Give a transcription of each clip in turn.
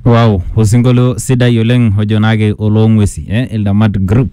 Wow, osinkolio sidai oleng ojo naake oloong'uesi eh, Ildamat Group.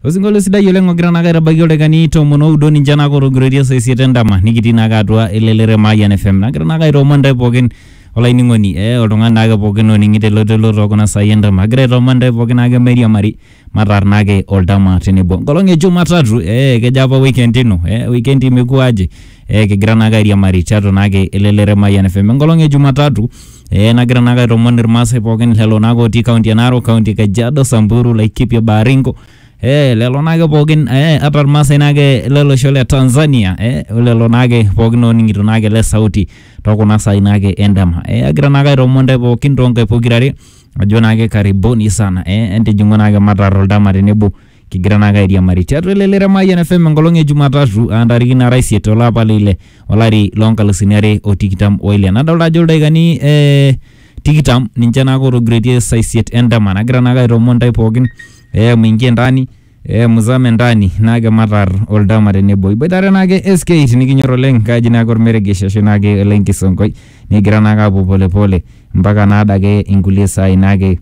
Osinkolio sidai oleng ogira naake aitabaiki oldakikani tomon oudo ninche naake otogiroitie saa isiet endama nikitii naake atua elelere Mayian FM. Nagira naake aitoomon intae pookin olainining'oni eh, oltung'ani naake pookin oning'ito elototo tookuna saai endama. Agira aitoomon intae pookin naake mairiamari Mataarnaki oldama tenebo enkolong e Jumatatu eh, kejo apa weekend ino eh, weekend imekuwa aje eh, kigira naake airiamari tiatua naake elelero e Mayian FM enkolong e Jumatatu eh, nagira naake aitoomono irmaasai pookin lelo naake otii kaunti e Narok, kaunti e Kajiado, Samburu, Laikipia, Baringo eh, lelo naake pookin eh, ata irmaasai naake lelosho le Tanzania eh, lelo naake pookin ooning'ito naake le sauti tokuna saai naake endama eh, agira naake aitoomono ntae pookin toonkae pokirare ajo naake karibuni sana eh, entijing'u naake matar oldama tenebo kigira naake airiamari tiatua ele leremayian fm enkolong e jumatatu aa ntarikini nara isiet olapa leile olari loonkalusuni are o tikitam oile nadolta ajo ildaikani eh, tikitam ninche naake otogiroitie saa isiet endama nagira naake aitoomon ntae pookin eh, muingie ndani Eh, muzame ndani naake matar oldama tenebo iboitare naake SK tinikinyor oleng kaji naake ormeregesh ashu naake ole nkisonkoi nikigira naake apuo polepole mpaka naadake inkulie saai naake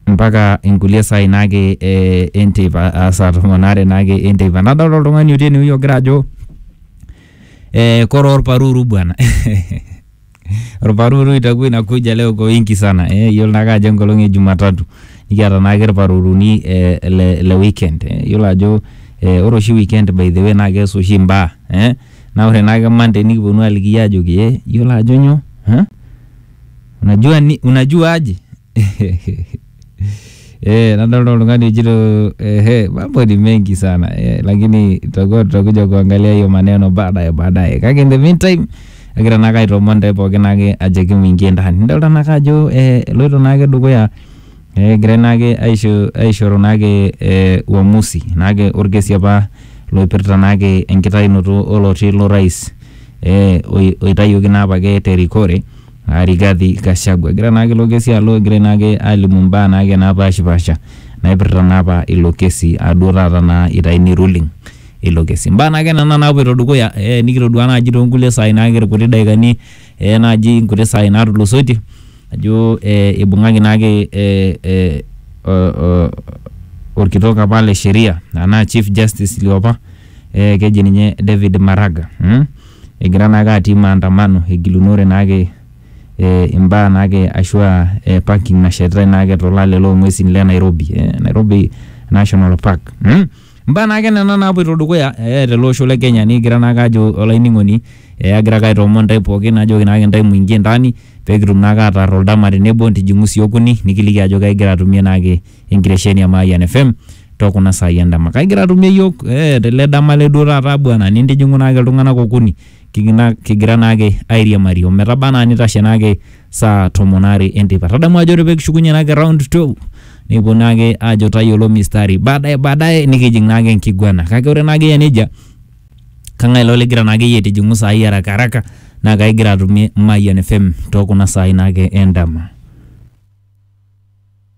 mpaka inkulie saai naake eh, enteipa aa saa tomon aare naake enteipa nadolta oltung'ani otii enewueji ogira ajo eh, kore orparuru bwana Irparuru itakuwa inakuja leo kwa wingi sana. Eh, yiolo naake ajo enkolong e Jumatatu. Nikiata naake irparuruni eh, le, le weekend. Eh, yiolo ajo eh, ore oshi weekend by the way naa kees oshi imbaa. Eh, naa ore naake Monday nikiponu aliki iyie ajoki eh, yiolo ajo nyoo? Eh? Unajua, ni, unajua aje? Eh, nadolta oltung'ani ojito ehe, mambo ni mengi sana eh, lakini tutakuwa tutakuja kuangalia hiyo maneno baadaye baadaye. Kake in the meantime agira naake aitoomon ntae pookin ake ajoki mingie ndani. Nidolta naake ajo eh, eloito naake dukuya eh, egirai naake aisho aishoru naake eh, uamuzi naake orkesi apa loipirta naake enkitainoto oloti lo rais eh, oi- oitayioki naa apake terikore aa Rigathi Gachagua. Egira naake ilo kesi alo egirai naake alimu imbaa naake napaashipasha naipirta naa apa ilo kesi aa duo taata naa itayuni ruling ilo kesi. Imbaa naake nena naapuoito dukuya ee nikitoduaa naaji too nkulie saai naake irkuti dakikani ee naaji inkuti saai naatulusoitie ajo ee ibung'aki naake ee ee oo orkitok apa le sheria enaa chief justice liopa ee keji ninye David Maraga mmh. egira naake atii maandamano egilunore naake eh imbaa naake ashua eh parking nashetitae naake tolale long'uesin le Nairobi eh Nairobi National Park mmh. Imbaa naake nena naapuoito dukuya eh tele osho le Kenya nikigira naake ajo olainining'oni eh agira ake aitoomon intae pookin ajoki naake intae muingie ndani pekitum naake ataar oldama tenebo ntijing'u sii okuni nikiliki ajo kaigira atumie naake enkitesheni e Mayian FM too kuna saai endama. Kake igira atumie iyiook eh, tele dama le duo taata bwana nintijing'u naake iltung'anak okuni kigina- kigira naake airiamari ometaba anaa nitashe naake saa tomon aare enteipa. Tadamu ajo ore pee kishukunye naake round 12 nikipuo naake aajo tayiolo mistari baadaye baadaye nikijing naake enkiguana kake ore naake eyia nejia kang'ae ilo ligira naake iyie aitijing'u saai haraka haraka naa kaigira atumie Mayian FM too kuna saai naake endama.